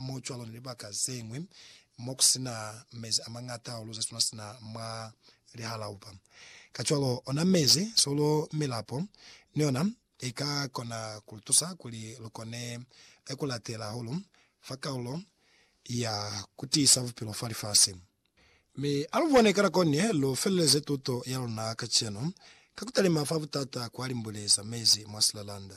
mo cwalo ni libaka zeñwi mo ku si na mezi a mañata hahulu ze suna sina mwa lihalaupa. Kacwalo, ona mezi, solo, milapo ni yona i ka kona ku lu tusa kuli lu kone ku latela hahulu fa kalulo ya ku tiisa bupilo fa lifasi. Mi a lu bone ka nako ni ye lu feleleze tuto ya luna kacenu ka ku talima fa butata kwa limbwile za mezi mwa silalanda.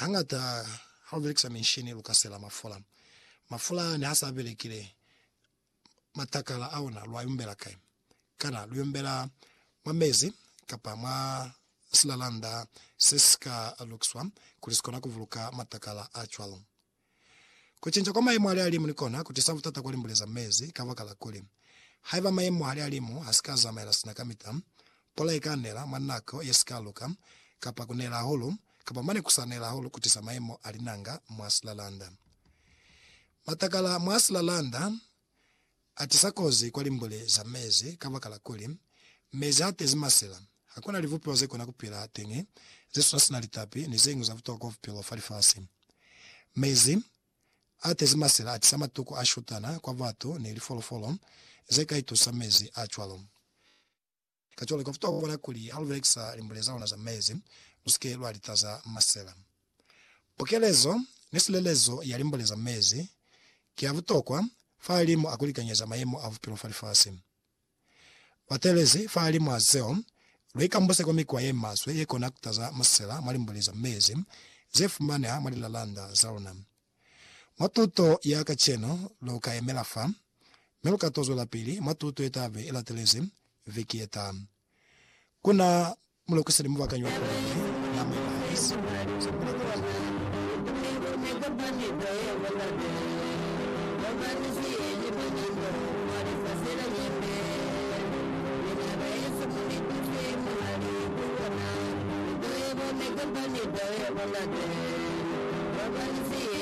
Hañata ha u belekisa minshini lu ka sela mafula. Mafula ne ha sa belekile, matakala a ona lu a yumbela kai? Kana lu yumbela mwa mezi kapa mwa silalanda se si ka lukiswa kuli si kona ku buluka matakala a cwalo? Kucinca kwa mayemo ali alimu ni kona kutisa butata kwa limbule za mezi, kabakala kuli, haiba mayemo hali alimu hasika azamaela sina kamita, pula ika nela mwa nako yesika luka, kapa kunela hahulu, kapa mane kusa nela hahulu kutisa mayemo a linanga mwa silalanda. Matakala mwa silalanda Atisa kozi kwa limbule za mezi kabakala kuli, mezi atezi masela. Hakuna libupeho zekona kupila teñi zesuna sina litapi ni zeñwi za butokwa bupilo fa lifasi. Mezi atezi masela atisa matuku ashutana kwa batu ni lifolofolo zeka itusa mezi acwalo. Kacwalo, ka futa kubona kuli ha lu belekisa limbule za luna za mezi, lu si ke lwa litaza masela. Pukelezo ni silelezo ya limbule za mezi ki ya butokwa fahalimw'a kulikanyeza mayemo a bupilo fa lifasi. Batelezi, fahalimw'a zeo, lu ikambuse kwa mikwa ye maswe ye kona kutaza masela mwa limbule za mezi ze fumaneha mwa lilalanda za luna. Mwa tuto ya kacenu, lu ka yemela fa, mi lu ka to zwelapili mwa tuto ye ta be i latelezi viki ye taha. Ku na mulukiseli mubakanyi wa Pulani, Naomi Barnes. Ku na taba ye tala.